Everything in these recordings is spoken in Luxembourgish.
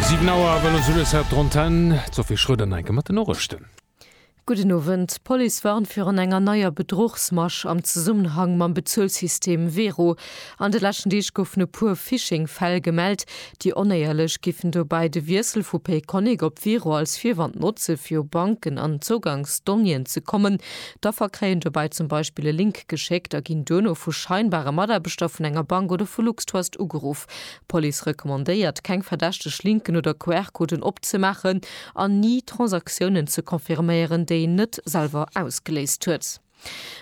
Siwen Auer, wëll o Sylles hat d'Antenne d'Sophie Schröder Neiken mat den Noriichten. Gudden Owend, D'Police warnt virun enger neier Bedruchsmasch am Zesummenhang mam Bezuelsystem Wero. An de leschten Deeg goufen e puer Phishing-Fäll gemellt. Déi Onéierlech géifen dobäi de Wiessel vu Payconiq op Wero als Virwand notze fir u Banken an Zougangsdonniéen ze kommen. D'Affer kréien dobäi zum Beispill e Link geschéckt a ginn duerno vu scheinbare Mataarbechter vun enger Bank oder vu LuxTrust ugeruff. D'Police recommandéiert, keng verdächteg Linken oder QR-Coden opzemaachen an ni Transaktiounen ze confirméieren, déi een net selwer ausgeléist huet.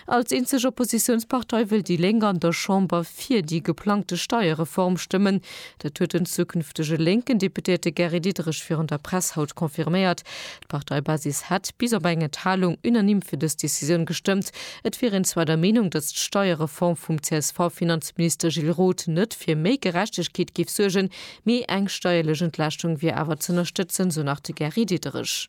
Als eenzeg Oppositiounspartei wëll déi Lénk an der Chamber fir déi geplangte Steierreform stëmmen. Dat huet den zukünftege lénken Deputéierte Gary Diderich virun der Press haut confirméiert. D'Parteibasis hätt, bis op eng Enthalung, unanime fir dës Decisioun gestëmmt. Et wier een zwar der Meenung, datt d'Steierreform vum CSV-Finanzminister Gilles Roth net fir méi Gerechtegkeet géif suergen, mee eng steierlech Entlaaschtung wier awer z'ënnerstëtzen, sou nach de Gary Diderich.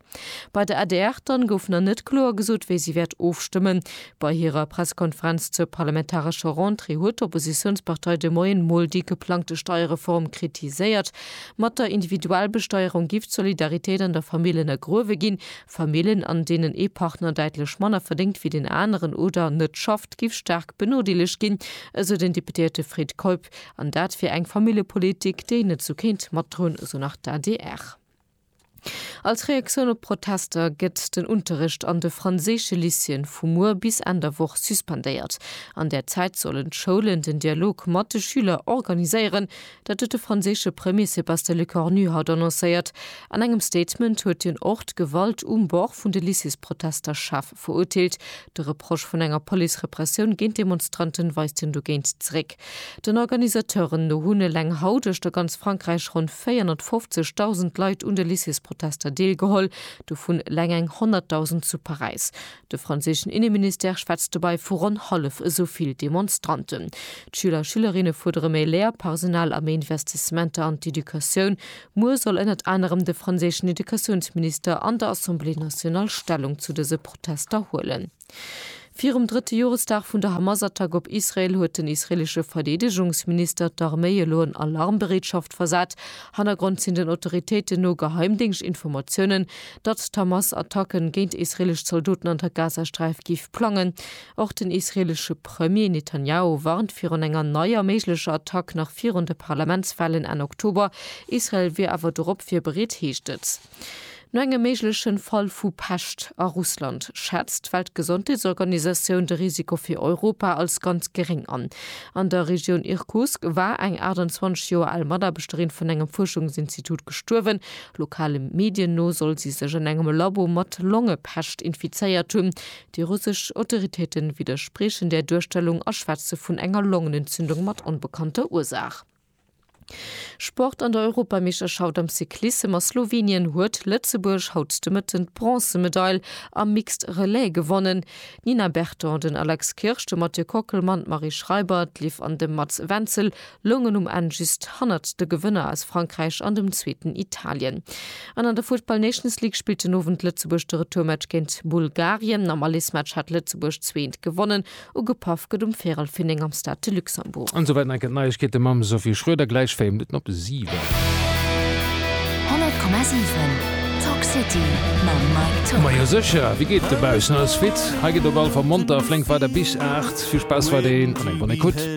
Bei der adr dann gouf nach net kloer gesot, wéi si wäert ofstëmmen. Bei hirer Pressekonferenz zur parlamentarescher Rentrée huet d'Oppositiounspartei de Moien mol déi geplangte Steierreform kritiséiert, Mat der Individualbesteierung giff d'Solidaritéit an der Famill ënnergruewe ginn. Famillen, an deenen ee Partner däitlech manner verdéngt wéi deen aneren oder net schafft, giff staark benodeelegt ginn, esou den Deputéierte Fred Keup. An dat wier eng Familljepolitik, déi en net esou kéint matdroen, esou nach d'ADR. Als Reaktioun op d'Protester gëtt den Unterrecht an de franséische Lycéeën vu muer bis Enn der Woch suspendéiert. An där Zäit sollen d'Schoulen den Dialog mat de Schüler organiséieren. Dat huet de franséische Premier Sébastien Lecornu haut annoncéiert. An engem Statement huet hien och d'Gewalt um Bord vun de Lycéesprotester schaarf Verurteelt de Reproche vun enger Police-Repressioun géint d'Demonstranten, weist hien dogéint zeréck. Den Organisateuren no hunn eleng haut uechter ganz Frankräich ronn 450.000 Leit un de Lycées-Protester deelgeholl, dovun eleng eng 100.000 zu Paräis. De franséischen Inneministère schwätzt dobäi vu ronn hallef esou vill Demonstranten. D'Schüler a Schülerinne fuerdere méi Léierpersonal a méi Investissementer an d'Educatioun. Muer soll ënnert anerem de franséischen Educatiounsminister an der Assemblée nationale Stellung zu dëse Protester huelen. Virum drëtte Joresdag vun der Hamas-Attack op Israel huet den israeelesche Verdeedegungsminister d'Arméi elo an Alarmbereetschaft versat. Hannergrond sinn den Autoritéiten no Geheimdéngschtinformatiounen, datt d'Hamas Attacke géint israeelesch Zaldoten an der Gazasträif géif plangen. Och den israelesche Premier Netanjahu warnt virun enger neier méiglecher Attack nach virun de Parlamentswahlen Enn Oktober. Israel wier awer dorop virbereet, heescht et. No engem méiglechen Fall vu Pescht a Russland schätzt d'Weltgesondheetsorganisatioun de Risiko fir Europa als ganz geréng an. An der Regioun Irkutsk war eng 28 Joer al Mataarbechterin vun engem Fuerschungsinstitut gestuerwen. Lokale Medien no soll si sech an engem Labo mat Longepescht infizéiert hunn. Déi russesch Autoritéite widderspriechen där Duerstellung a schwätze vun enger Longenentzündung mat onbekannter Ursaach. Sport An der Europameeschterschaft am Cyclissem a Slowenien huet Lëtzebuerg haut de Mëtten d'Bronzemedail am Mixed Relais gewonnen. D'Nina Berton, den Alex Kirsch, de Mathieu Kockelmann, d'Marie Schreiber, d'Liv an de Mats Wenzel loungen um Enn just hannert de Gewënner aus Frankräich an dem zweeten Italien. An an der Futtball Nations League spillt den Owend Lëtzebuerg de Retourmatch géint Bulgarien. Am Allesmatch hat Lëtzebuerg zwee ent gewonnen. Ugepaff gëtt um Viralfin 9 am Stade de Luxembourg. An souwäit enke Neiegkeete mam Sophie Schroeder, gläich 4 Minutten op 7. 100,7 Talk City mam Mike Tock. Majo secher, wéi geet dobaussen? Alles fit? Hei geet op allefall monter a flénk weider bis 8. Vill Spaass weiderhin an eng bonne Ecoute.